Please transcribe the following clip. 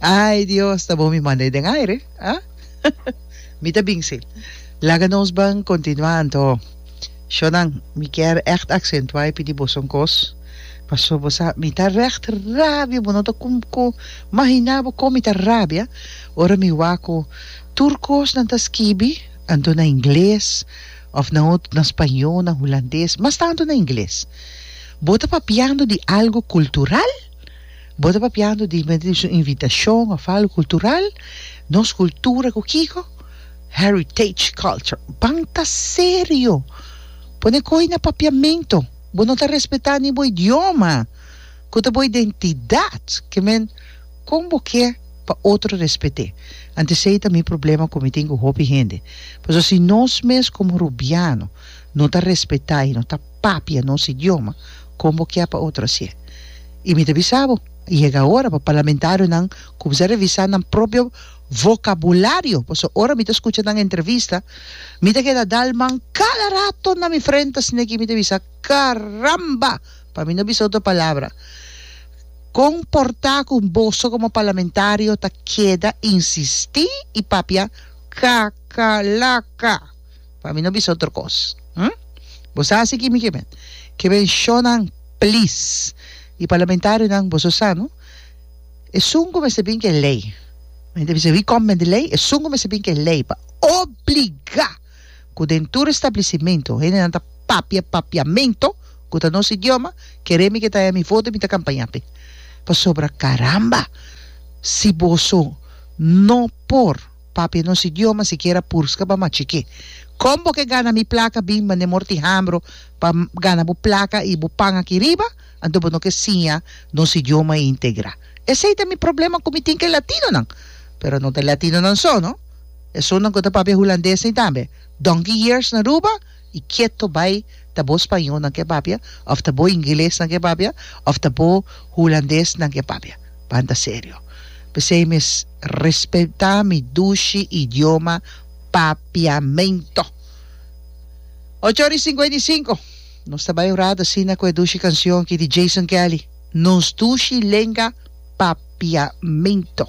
Ai Dios, ta bon mi manda e den aire. Ha? mi ta bin si. Laga nos ban continua anto. Shonan, mi kier echt accentua y pidi boso un cos. Paso bo sa, mi ta recht rabia, bo no ta con con mahina bo con mi ta rabia ora mi hoa cu tur cos nan ta skibi anto na ingles of na otro, na spaño, na hulandes, mas tanto na ingles. Bo ta papiando di algo cultural? Bo ta papiando di mente di su invitashon of algo kultural? Nos kultura ku kiko? Heritage culture. Ban ta serio! Pone koi na papiamentu! Bo no ta respetá ni bo idioma, ku ta bo identidat. Ke men, kon bo ke pa otro respet'é? Anto esei ta mi problema ku mi tin ku hopi hende. Pasobra si nos mes komo Rubiano no ta respetá i no ta. papia nos idioma kon bo kia pa otro hasié i mi ta bisa bo a yega ora pa parlamentarionan kumsa revisá nan propio vokabulario pasobra ora mi ta skucha nan entrevista mi ta keda dal man kada rato na mi frente a sneki mi ta bisa karamba pa mi no bisa otro palabra kon por ta ku boso komo parlamentario ta keda insistí i papia kakalaka. Pa mi no bisa otro kos. Hm? Bo sa hasi kimi ke men? Ke men shownan plis. Di parlamentarionan boso sa no? Esun ku mester bin ke lei. Men ta bisa wi kòm men di lei? Esun ku mester bin ke lei pa obligá ku den tur establisimentu hendenan ta papia papiamentu ku ta nos idioma, kere mi ke ta haya mi voto i mi ta kampañá p'e. Pasobra karamba si boso no por. Papia nos idioma sikiera purska pa machikí. Kon bo ke gana mi plaka bin mande Morty Hambro pa gana bo plaka i bo pan aki riba? Anto bo no ke siña nos idioma integrá. Esei ta mi problema ku mi tin ke latinonan. Pero no ta latinonan so no. Esunnan ku ta papia hulandesnan tambe. Donkey years na Aruba? y keto bay ta bo spaño nan ke papia of ta bo ingeles nan ke papia of ta bo hulandes nan ke papia banda serio pesey mes respeta mi dushi idioma papiamento ocho ora y cincuenta y cinco nos ta bay un rato asina cu e dushi cancion ki di Jason Kelly nos dushi lenga papiamento.